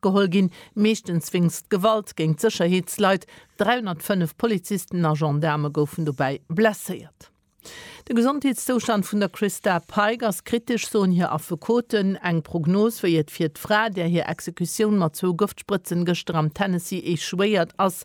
Kontakt geholl ginn, meeschtens wéinst Gewalt géint d'Sécherheetsleit. 305 Polizisten a Gendaarme goufen dobäi blesséiert. De Gesondheetszoustand vun der Christa Pike ass kritesch, soen hir Affekoten. Eng Prognos, wéi et fir d'Fra, där hir Exekutioun mat zwou Gëftsprëtzen gëschter am Tennessee echouéiert ass,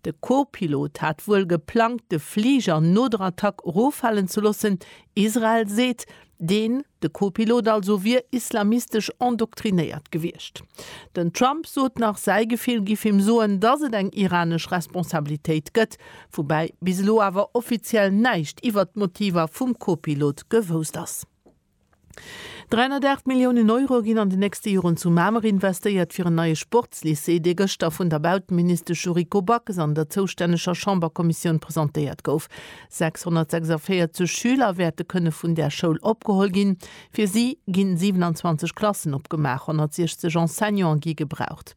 De Co-Pilot hat wuel geplangt, de Fliger no der Attack eroffalen ze loossen. Israel seet, deen, de Co-Pilot also, wier islamistesch endoktrinéiert gewiescht. Den Trump sot nach, säi Gefill giff him soen, datt et eng iranesch Responsabilitéit gëtt, woubäi bis elo awer offiziell näischt iwwert d'Motiver vum Co-Pilot gewousst ass. 308 Milliounen Euro ginn an den nächste Joren zu Mamer investéiert fir en neie Sportslycée, dee gëschter vun der Bauteministesch Yuriko Backes an der zoustänneger Chamberkommissioun presentéiert gouf. 646 Schüler wäerte kënne vun där Schoul opgeholl ginn. Fir si gi 27 Klassen opgemaach, 160 Enseignante gi gebraucht.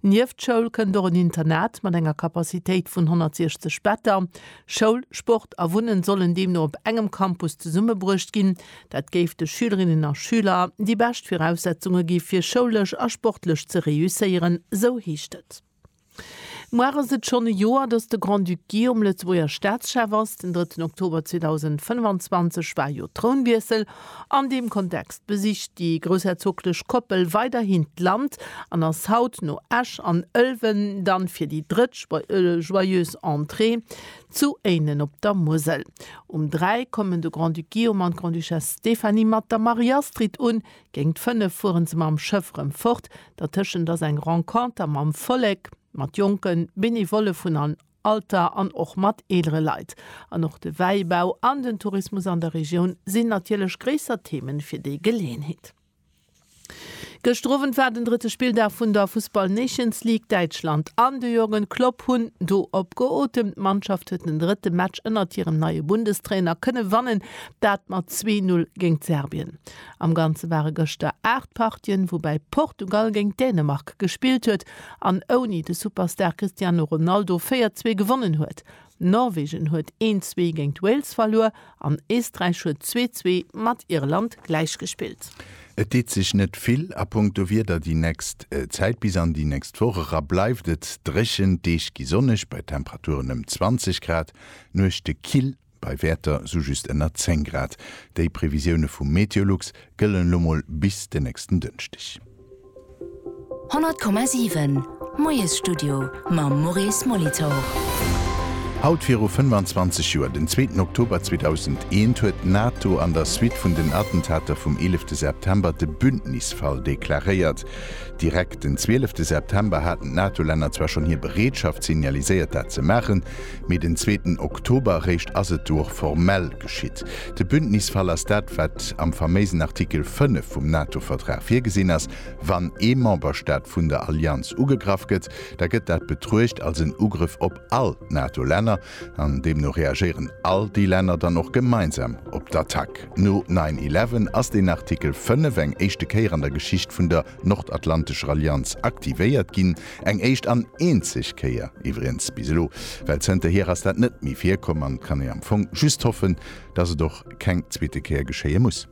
Nieft Schoul kënnt och en Internat mat enger Capacitéit vun 160 Better. Schoul, Sport a Wunnen sollen deemno op engem Campus zesummebruecht ginn. Dat géif de Schülerinnen a Schüler déi bescht Viraussetzunge gi fir schoulesch a sportlech ze réusséieren, esou heescht et. Muar ass et schonn e Joer, datt de Grand-Duc Guillaume Lëtzebuerger Staatschef ass. Den drëtten Oktober 2025 war jo Trounwiessel. An deem Kontext besicht déi groussherzoglech Koppel weiderhin d'Land an ass haut no Esch an Ëlwen dann fir déi drëtt Joyeuse Entrée zu Éinen op der Musel. Um 3 kommen de Grand-Duc Guillaume an d'Grande-Duchesse Stéphanie mat der Marie-Astrid un. Géingt 5 fueren se mam Schëff rëm fort. Dertëschent ass eng Renconter mam Vollek, mat Jonken, Benevolle vun an Alter an och mat eelere Leit. An och de Wäibau an den Tourismus an der Regioun sinn natierlech gréisser Themen fir déi Geleeënheet. Gëschter Owend war den drëtte Spilldag vun der Fussball Nations League. Däitschland an de Jürgen Klopp hunn do op geotemt. D'Mannschaft huet den drëtte Match ënnert hirem neie Bundestrainer kënne wannen, dat mat zwee Null géint Serbien. Am Ganze ware gëschter 8 Partien, woubäi Portugal géint Dänemark gespillt huet. an ouni de Superstar Cristiano Ronaldo 4, 2 gewonnen huet. Norwegen huet 1, 2 géint Wales verluer an Eesträich huet 2, 2 mat Irland gläichgespillt. Et deet sech net vill a punkto Wieder déi nächst Zäit. Bis an déi nächst Woch era bleift et dréchen, d'Deeg gi sonneg bei Temperaturen ëm 20 Grad, Nuechte kill. Bei Wäerter sou just ënner 10 Grad. Déi Previsioune vu Meteolux gëllen elo mol bis de nächsten Dënschdeg. 100,7 Moiesstudio mam Maurice Molitor. Haut viru 25 Joer, den zweeten Oktober 2001, huet d'NATO an der Suite vun den Attentater vum eelefte September de Bündnisfall deklaréiert. Direkt den zwielefte September haten d'NATO-Länner zwar schonn hir Bereetschaft signaliséiert, dat ze maachen, Mee den zweeten Oktober eréischt ass et du och formell geschitt. De Bündnisfall ass dat, wat am faméisen Artikel 5 vum NATO-Vertrag virgesinn ass, Wann ee Memberstaat vun der Allianz ugegraff gëtt, da gëtt dat betruecht als en Ugrëff op all d'NATO-Länner, an deemno reagéieren all déi Länner dann och gemeinsam op d'Attack. No nine eleven ass deen Artikel 5 eng éischte Kéier an der Geschicht vun der Nordatlantesch Rallianz aktivéiert ginn, eng éischt an eenzeg Kéier iwwregens bis elo, well zënterhier ass dat net méi virkomm an et kann ee am Fong just hoffen, dass et och keng zweete Kéier geschéie muss.